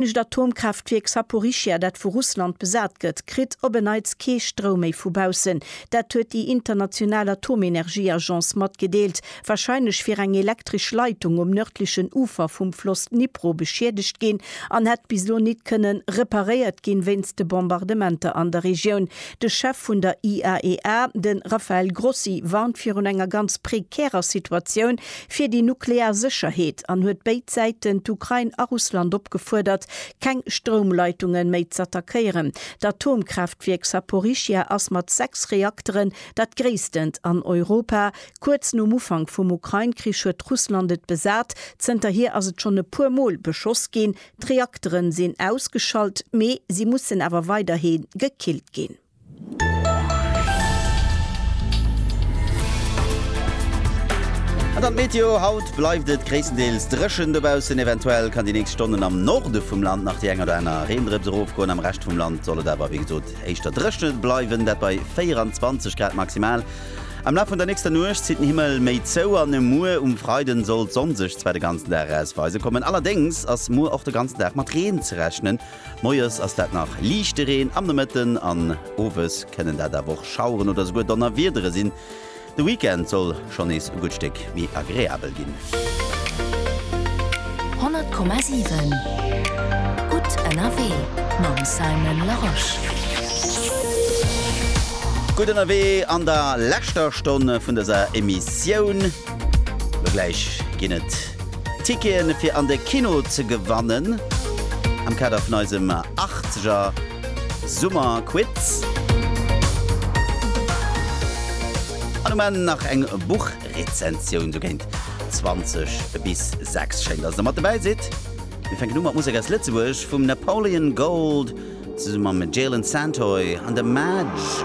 D'nächst Atomkraaftwierk Saporischschja, dat vu Russland besat gëtt, kritt op en Neits kee Stroum méi vu baussen. Dat huet déi international Atomenergieagence matgedeelt. Warscheinlech wier eng elektresch Leitung um nërdlechen Ufer vum Floss Dnipro beschiedegt ginn an hätt bis elo nit kënne reparéiert ginn, wéinst de Bombardementer an der Regioun. De Chef vun der IAEA, de Rafael Grossi, warnt virun enger ganz prekärer Situatioun, fir déi nuklear Sécherheet an huet béid Säiten, d'Ukrain a Russland, opgefuerdert, keng Stroumleitunge méi z'attackéieren. D'Atomkraaftwierk Saporischschja ass mat sechs Reakteren dat gréisstent an Europa. Kuerz nom Ufank vum Ukrain-Krich huet Russland et besat. Zënterhier ass et schonn e puer Mol beschoss ginn. D'Reaktere sinn ausgeschalt, mee si mussen awer weiderhi gekillt ginn. An dann d'Meteo, Haut bleift et gréisstendeels dréchen dobaussen, eventuell kann déi nächst Stonnen am Norde vum Land nach déi eng oder aner Reendrëps erofgoen. Am Rescht vum Land soll et awer wéi gesot éischter dréchent bleiwen, dat bei 24 Grad maximal. Am Laf vun der nächster Nuecht zitt den Himmel méi zou an e muer um Freiden soll d'Sonn sech zwar de ganzen Dag erausweisen kommen. Allerdéngs ass muer och de ganzen Dag mat Reen ze rechnen. Moies ass dat nach liichte Reen, am Nomëtten an Owes kënnen dat awer och Schaueren oder souguer Donnerwiedere sinn. De Weekend soll schonn nees e gutt Stéck méi agreabel ginn. 100,7 Gutt ënnerwee mam Simon Larosche. Gutt ënnerwee an der leschter Stonn vun dëser Emissioun. Elo gläich ginn et. Ticketen fir an de Kino ze gewannen am Kader vun eisem Achtzeger Summerquiz. An um Enn nach eng Buchrezensioun, sou géint 20 bis 6. Schéin, dass der mat dobäi sidd. Mir fänken u mat Musek aus Lëtzebuerg vum Napoleon Gold zesumme mam Jalen Santoy an de Madge.